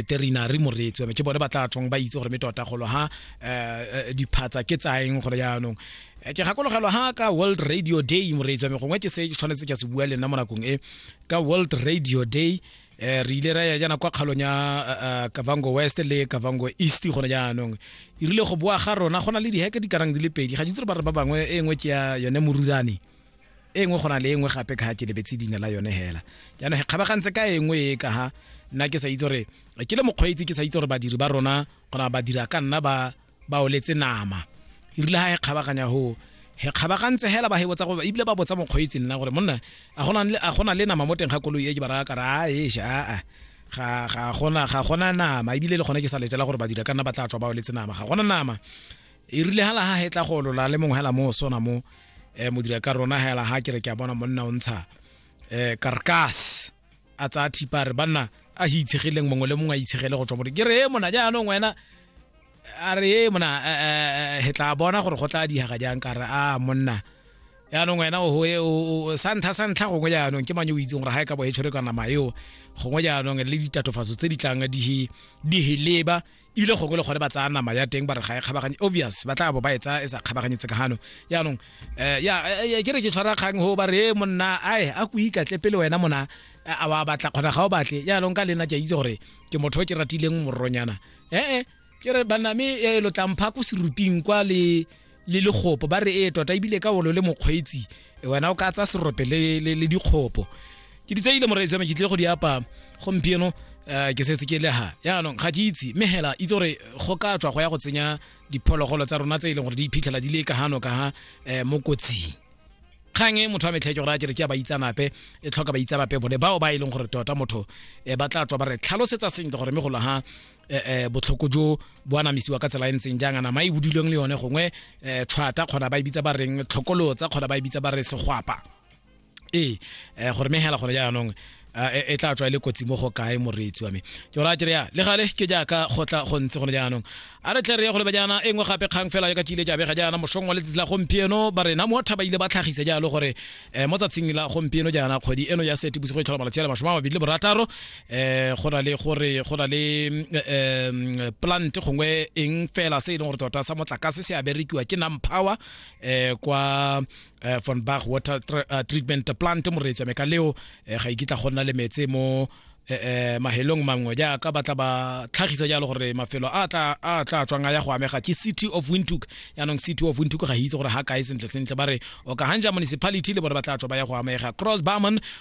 terina re moreetsi wa ke bone ba tla tshwang ba itse gore me tota golo ha um diphatsa ke tsaeng gore yaanong eh, ke gakologelwa ha ka world radio day moreetsi wa me gongwe ke se ke tshwanetse ke se bua le nna mo nakong e ka world radio day um re ile ra ya jaana kwa kgalong ya kavango west le kavango east gone jaanong e rile go boa ga rona go na le diheke di karang di le pedi ga ditse re ba re ba bangwe e nngwe ke ya yone morurane e nngwe go na le e nngwe gape ka ga ke lebetse leina la yone hela jaanong ge kgabagantse ka e nngwe e ka ga nna ke sa itse gore ke le mokgweetsi ke sa itse gore badiri ba rona gona ba dira ka nna ba ba oletse nama e rile ga e kgabaganya go he kgabagantse hela ba hebotsa goba ebile ba botsa mokgweetsi nna gore monna a gona le nama mo teng ga koloi e ke ba raya kare a esha aa ga ga gona ga gona nama ebile le gone ke sa letela gore ba dira ka nna ba tla tswa ba oletse nama ga gona nama e rile ga laga hetla go olola le mongwe hela mo sona mo um modira ka rona hela ga ke re ke a bona monna o ntsha um karkas a tsaya thipa re banna a se itshegileng mongwe le mongwe a itshegele go tswa mo ke re e mona jaanong wena a re e mona he tla bona gore go tla dihaga jang ka re a monna yaanong wena o sa ntlha sa ntlha gongwe jaanong ke manye o itseng gore ga e ka bo e tshwere ka nama eo gongwe jaanong le ditatofatso tse di tlang di heleba ebile gongwe le gone ba tsaya nama ya teng ba re ga e kgabaganye obvious ba tla bo ba e tsaya e sa kgabaganye tsekagano yaanong eh, ya eh, eh, ke re ke tshwara kgang go ba re e monna ae a ko ikatle pele wena mona a wa batla kgona ga o batle yaanong ka lena ke a itse gore ke motho o ke ratileng moronyana ee ke re baname lo tlampha ko seruping kwa le le lekgopo ba re ee tota ebile ka olo le mokgweetsi e, wena o ka tsa serope le, le, le dikgopo ke di tseile moreetsi me ke tlile go di apa gompieno um ke setse ke leha yaanong ga ke itse mme hela itse gore go ka tswa go ya go tsenya diphologolo tsa rona tse e leng gore di iphitlhela di le ka hano ka ha um mo kotsing kgang e motho wa metlheke gore a kere ke ya baitsanape e tlhoka baitsanape bone bao ba e leng gore tota motho um ba tla tswa ba re tlhalosetsa sentle gore mme golo ha eh, eh, botlhoko jo bo anamisiwa ka tsela e ntseng jang a nama e bodilweng le yone gongwe eh, tshwata kgona ba e bitsa ba reng tlhokolotsa kgona ba e bitsa ba re segwapa ee eh, gore megela gone jaanong Ah, e, e tla tswa e le kotsi mo go kae moreetsi wa me ke gore a kere ya le gale ke jaaka go tla go ntse gone jaanong a re tle re ye go leba jaana e nngwe gape kgang fela ya ka ke ile ke abega jaana mosong wa letsatsi la gompieno ba rena mo thaba ile ba tlhagise jalo gore um mo tsatsing la gompieno jaana kgwedi eno ya sete bosigo e tlhola malatsi a le masome a mabedi le borataro eh go na le gore go na le um plant gongwe eng fela se e leng gore tota sa motlakase se a berekiwa ke nam power um kwa eh, von bach water eh, treatment plant moreetswa me ka leo eh, ga ikitla e go nna le metse mo eh mahelong mangwe jaaka ba tla ba tlhagisa jalo gore mafelo a tla a tla tswang a ya go amega ke city of windhoek yaanong city of windhoek ga itse gore ga kae sentle sentle ba re o ka hanja municipality le bone ba tla tswa ba ya go amega cross barman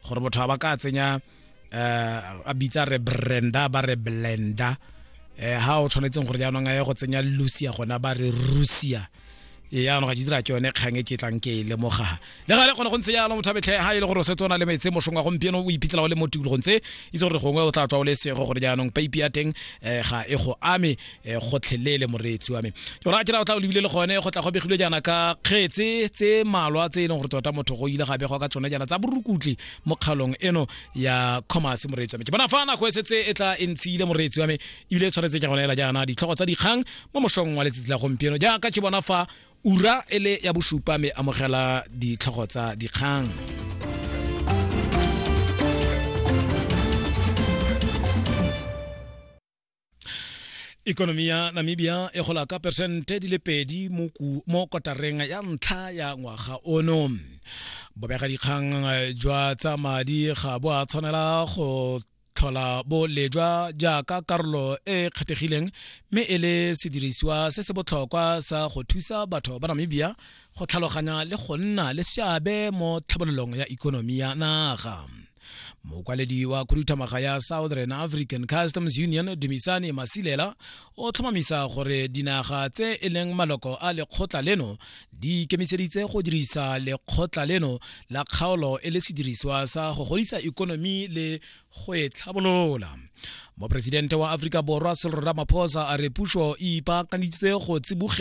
gore motho a ba ka tsenya eh, a bitsa re brenda ba re blenda eh ha o tshwanetseng gore jaanong a ye go tsenya lucia gona ba re rusia ee yaanong ga ditsela ke yone kgang e ke tlang ke e lemoga le ga le kgone go ntse jalo motho abetlhe ga e le gore o setse o na le metse mosong wa gompieno o iphitlhela o le mo tikologong tse itse gore gongwe o tla tswa o le sego gore jaanong paipi ya teng um ga e go ame Eh, gotlhelele moreetsi wa me jona ke ra o tla o lebile le gone go tla go begilwe jaana ka kgetse tse malwa tse e leng gore tota motho go ile ga begwa ka tsone jaana tsa borukutli mo kgaolong eno ya commerce moreetsi wa me ke bona fa nako e setse e tla e ntshile moreetsi wa me ebile e tshwanetse ke gone ela jaana ditlhogo tsa dikgang mo mosong wa letsatsi la gompieno jaaka ke bona fa ura e le ya bosupa me amogela ditlhogo tsa dikgang ikonomi ya namibia e gola ka peresente di le pedi mo ku- mo kotareng ya ntlha ya ngwaga ono bobegadikgang eh, jwa tsa madi ga bo a tshwanela go tlhola bo lejwa jaaka karolo e e kgethegileng mme e le sedirisiwa se se botlhokwa sa go thusa batho ba namibia go tlhaloganya le go nna le seabe mo tlhabololong ya ikonomi ya naga mokwaledi wa khuduthamaga ya southern african customs union dumisane masilela o tlhomamisa gore dinaga tse e leng maloko a lekgotla leno di ikemiseditse go dirisa lekgotla leno la kgaolo e le sediriswa sa go godisa ikonomi le go e tlhabolola moporesidente wa aforika borwa sello ramaphosa a re puso e ipaakaneditse go tsibogela